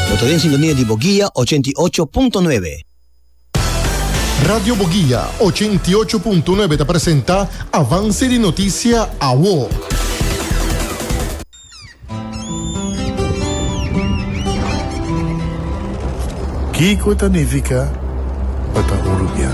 Bo ta den sintonia di Boguia ochenta i ocho punto nuebe. Radio Boguia ochenta i ocho punto nuebe ta presenta Avance di Noticia Awo. Kiko ta nifica pa ta urubian?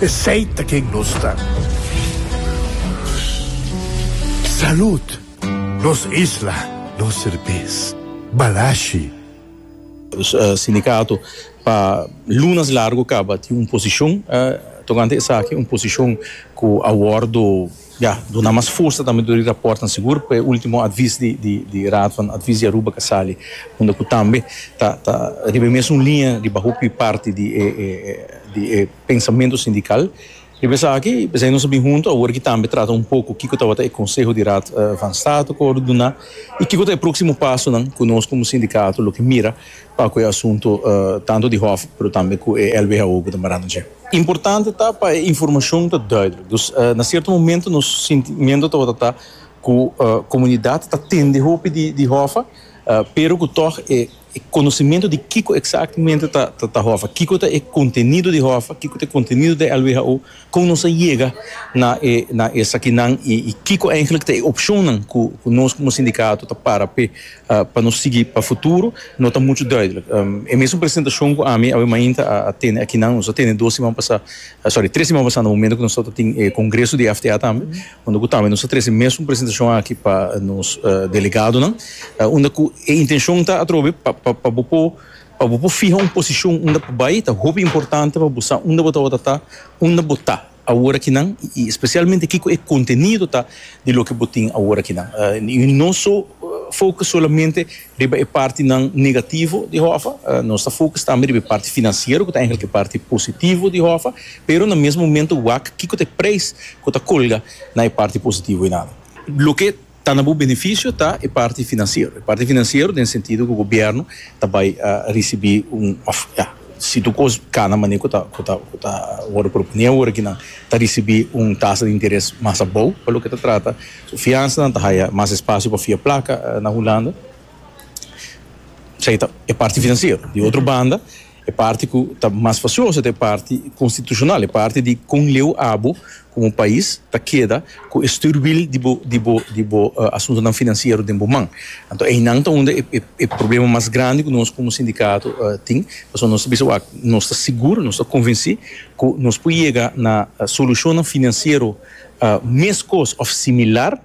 Esey ta ken nos ta. Salud! Nos isla, nos serbes. Balashi. Sindicato pa lunas largo caba tin un posicion tocante esaki, un posicion cu a wordo. Ya, duna mas fursa tambe tur di raportnan sigur pa e ultimo advis di Raad van Advies di Aruba ka sali, unda ku tambe ta riba e mesun liña riba hopi di parti di e pensamentu sindikal. Riba esaki p'esei nos a bin huntu awor aki tambe trata un poko kiko tabata e konseho di Raad van State ku a wòrdu duna i kiko ta e próksimo pasonan ku nos komo sindikato lo ke mira pa ku e asuntu tantu di hòf pero tambe ku e LBHO ku ta baranda dje. Importante ta pa e informashon ta duidelijk, dus na sierto momentu nos sintimentu tabata ta ku komunidat ta tende hopi di hòf pero ku tòg e konosimentu di kiko eksaktemente ta hòf, kiko ta e kontenido di hòf, kiko ta e kontenido di LBHO Kon nos a yega na e na esakinan i kiko eindelijk ta e opcionnan ku ku nos komo sindikato ta para p'e pa nos sigui pa futuro no ta muchu duidelijk. E mesun presentacion ku ami awe mainta a a tene akinan, nos a tene dos siman pasá, sorry, tres siman pasá na momento ku nos tabata tin e kongreso di FTA tambe, unda ku tambe nos a trese e mesun presentacion aki pa nos delegadonan, unda ku e intencion ta atrobe pa pa pa bo por Pa bo por fiha un posishon unda pa bai ta hopi importante pa bo sa unda bo tabata ta, unda bo ta aworakinan i espesialmente kiko e kontenido ta di loke bo tin aworakinan. I no so fokus solamente riba e partinan negativo di Hòfa, nos ta fokus tambe riba e parti finansiero ku ta èntr e parti positivo di Hòfa, pero na mes momento wak kiko ta e preis ku ta kolga na e parti positivo einan. Loke Ta na bo beneficio ta e parti financiero, e parti financiero den sentido cu gobierno ta bay ricibi un, of ya, si tur cos cana manera cu ta, cu ta, cu ta worde propone awor aki nan, ta ricibi un tasa di interes mas abou pa loke ta trata su fiansa nan, ta haya mas espacio pa fia placa na Hulanda. Esey ta e parti financiero. Di otro banda. E parti ku ta mas fasioso ta e parti konstitushonal, e parti di kon leu abo komo pais ta keda ku e stürwiel di bo di bo di bo asuntunan finansiero den bo man. Anto einan ta unda e e problema mas grandi ku nos komo sindikato tin. Pasobra nos ta bisa wak nos ta sigur, nos ta konvensí ku nos por yega na solushonnan finansiero meskos òf similar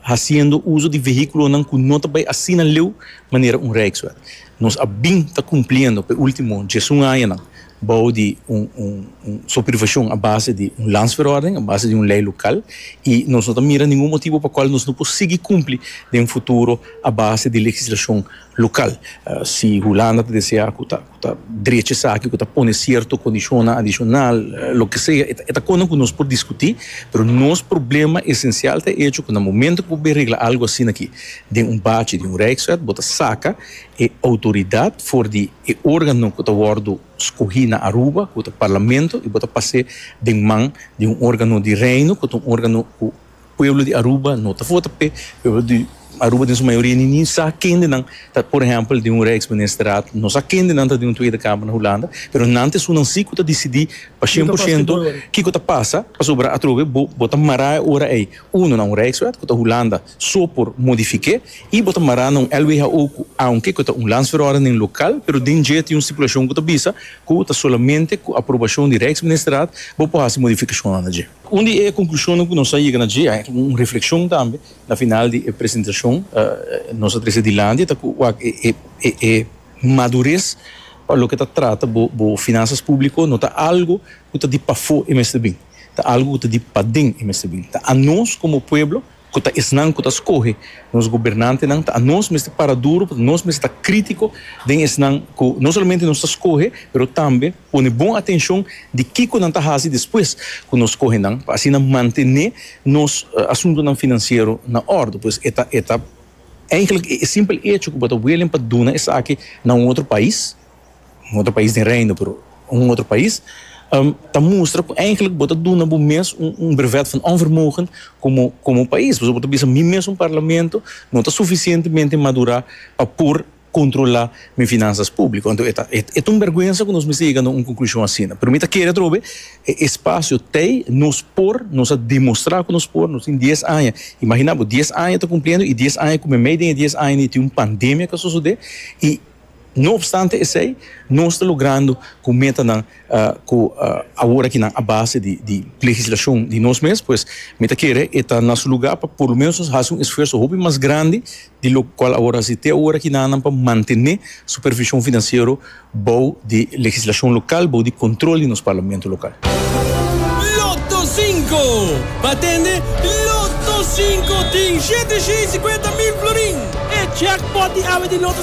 Hasiendo uso di vehíkulonan ku no ta bai asina leu manera un Rijkswet, nos a bin ta kumpliendo pa e último djesun añanan bou di un supervishon a base di un Landsverordening, a base di un lei lokal, i nos no ta mira ningun motibu pa kual nos no por sigui kumpli den futuro a base di legislashon lokal. Si Hulanda ta deseá ku ta cu ta drecha esaki, cu ta pone cierto condicionnan adicional, loke sea, e ta cosa cu nos por discuti, pero nos problema esencial ta e hecho cu na momento cu bo bin regla algo asina aki den un bachi di un Rijkswet, bo ta saca e autoridad for di e organo cu ta wordo scogi na Aruba, cu ta Parlamento, y bo ta pas'e den man di un organo di Reino, cu ta un organo cu. Pueblo di Aruba no ta vota p'e. Pueblo di Aruba den su mayoria ninin sa kendenan ta por ehempel di un reeks ministerat, no sa kendenan ta di un Tweede Kamer na Hulanda, pero nan ta esunnan si ku ta disidí pa shen por shento kiko ta pasa, pasobra atrobe bo bo ta mará e ora ei uno na un reekswet ku ta Hulanda so por modifik'é i bo ta mará na un LWHO ku aunke ku ta un landsverordening lokal pero den dje tin un stipulashon ku ta bisa ku ta solamente ku aprobashon di reeksministerat bo por hasi modifikashonnan na dje. Un di e konklushonnan ku nos a yega na dje, a yega un reflekshon tambe na final di e presentashon nos a trese dilanti, ta ku wak e madures pa loke ta trata bo finansas públiko no ta algu ku ta di pafó e mester bini, ta algu ku ta di paden e mester bini, ta anos komo pueblo ku ta esnan ku ta skohe nos gobernantenan, ta anos mester para duru, pasobra nos mester ta krítiko den esnan ku no solamente nos ta skohe, pero tambe pone bon atenshon di kiko nan ta hasi despues ku nos skohe nan, pa asina mantené nos asuntunan finansiero na òrdu. Pues e ta, e ta, èinklik e simpel echo ku bo ta welen pa duna esaki na un otro pais, un otro pais den Reino, pero un otro pais, ta mustra cu eigenlijk bo ta duna bo mes un brevet van onvermogen como pais, pasobra bo ta bisa mi mes un Parlamento no ta suficientemente madura pa por controla mi finanzas publico. Enton e ta e ta un berguensa cu nos mester yega na un conclusion asina. Pero mi ta kere atrobe e espacio tey nos por, nos a demostra cu nos por, nos tin dies aña, imagina bo dies aña ta cumpliendo y dies aña cu meimei den e dies aña ni tin un pandemia cu a sosode y. No opstante esei, nos ta logrando cu metanan cu awor aki nan a base di legislacion di nos mes, pues mi ta kere e ta na su lugar pa por lo menos nos haci un esfuerso hopi mas grandi di locual awor haci te awor aki nan pa mantene supervision financiero bou di legislacion local, bou di control di nos Parlamento local. Lotto Cinco, pa tende Lotto Cinco tin shete shei y cincuenta mil florin! E jackpot di awe di Lotto